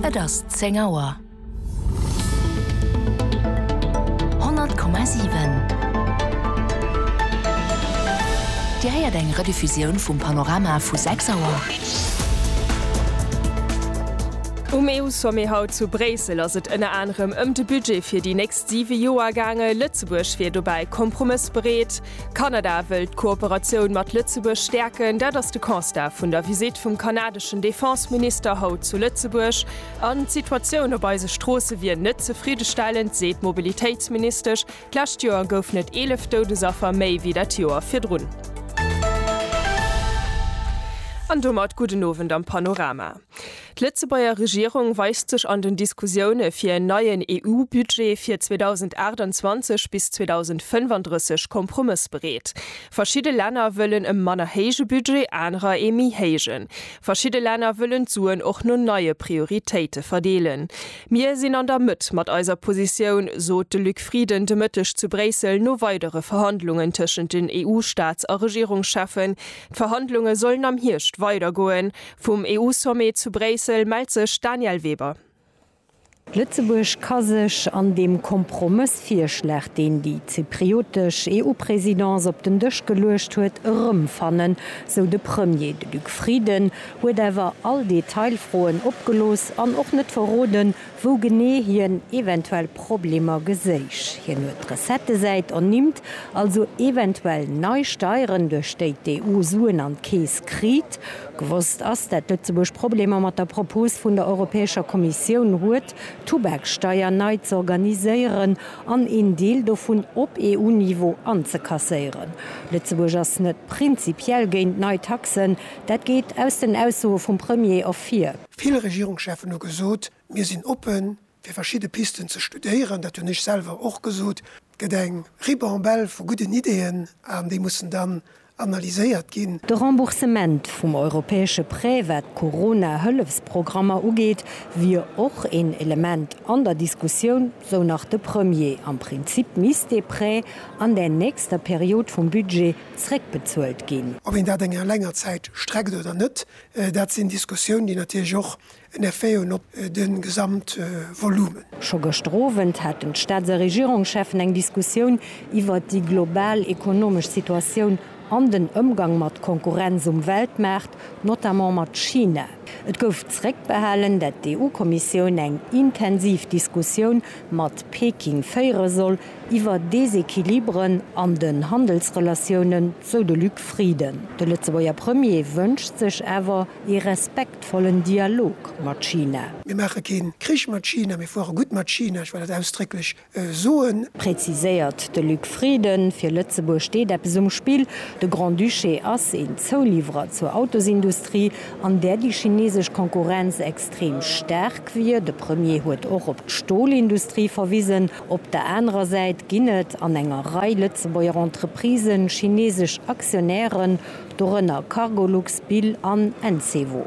Et ass 10 Auer. 100,7. Dir héiert eng Rediffusioun vum Panorama vu 6 Auer. Um EU-Sommet haut zu Bréissel ass et ënner anerem ëm de Budget fir déi nächst siwe Joer gaange. Lëtzebuerg wier dobäi kompromëssbereet. Kanada wëll d'Kooperatioun mat Lëtzebuerg stäerken, dat ass de Constat vun der Visitt vum kanadeschen Defenseminister haut zu Lëtzebuerg. An d'Situatioun op eise Stroosse wier net zefriddestellend, seet d'Mobilitéitsministesch. D'lescht Joer goufen et 11 Doudesaffer méi wéi dat Joer virdrun. An domat gudden Owend am Panorama. D'Lëtzebuerger Regierung weist sech an den Diskussioune fir en neien EU-Budget fir 2028 bis 2035 kompromëssbereet. Verschidde Länner wëllen e manner héije Budget, anerer ee méi héijen. Verschidde Länner wëllen d'Suen och no neie Prioritéite verdeelen. Mir sinn an der Mëtt mat eiser Positioun, sot de Luc Frieden de Mëtteg zu Bréissel no weidere Verhandlungen tëschent den EU-Staats a Regierungscheffen. D'Verhandlunge sollen am Hierscht weidergoen. Vum EU-Sommet zu Bréissel mellt sech d'Danièle Weber. Lëtzebuerg ka sech an deem Kompromëssvirschlag, deen déi zypriotesch EU-Presidence op den Dësch geluecht huet, erëmfannen, sou de Premier. De Luc Frieden huet awer all Detailfroen opgelooss an och net verroden, wou genee hien eventuell Problemer geséich. Hien huet d'Recettesäit ernimmt, also eventuell nei Steieren, duerch déi d'EU Suen an d'Keess kriit. Gewosst ass, dat Lëtzebuerg Problemer mat der Propos vun der Europäescher Kommissioun huet, d'Tubaksteier nei z'organiséieren an een Deel dovun op EU-Niveau anzekasséieren. Lëtzebuerg ass net prinzipiell géint nei Taxen, dat geet aus den Aussoe vum Premier ervir. Vill Regierungscheffen hu gesot, mir sinn oppe fir verschidde Pisten ze studéieren, dat hunn ech selwer och gesot. Et gëtt eng Ribambelle vu gudden Ideeën an déi mussen dann analyséiert ginn. De Remboursement vum europäesche Prêt wat d'Corona-Hëllefsprogrammer ugeet, wier och een Element an der Diskussioun, sou nach de Premier. Am Prinzip misst dee Prêt an der nächster Period vum Budget zréckbezuelt ginn. Ob een dat enger länger Zäit streckt oder net, Dat sinn Diskussiounen, déi natierlech och en Effet hunn op de Gesamtvolumen. Scho gëschter Owend haten d'Staats a Regierungscheffen eng Diskussioun iwwert déi global ekonomesch Situatioun an den Ëmgang mat Konkurrenz um Weltmaart, notamment mat China. Et gouf zréckbehalen, dat d'EU-Kommissioun eng intensiv Diskussioun mat Peking féiere soll, iwwer Desequilibren an den Handelsrelatiounen, sou de Luc Frieden. De Lëtzebuerger Premier wënscht sech awer ee respektvollen Dialog mat China. Mir maache kee Krich mat China, mir fuere gutt mat China, ech well dat ausdrécklech soen. Preziséiert de Luc Frieden. Fir Lëtzebuerg steet eppes um Spill. De Grand-Duché ass een Zouliwwerer zur Autosindustrie, an där déi chinesesch Konkurrenz extrem staark wier. De Premier huet och op d'Stolindustrie verwisen. Op der anerer Säit ginn et an enger Rei Lëtzebuerger Entreprisen chineesesch Aktionären, dorënner Cargolux, Bill an Encevo.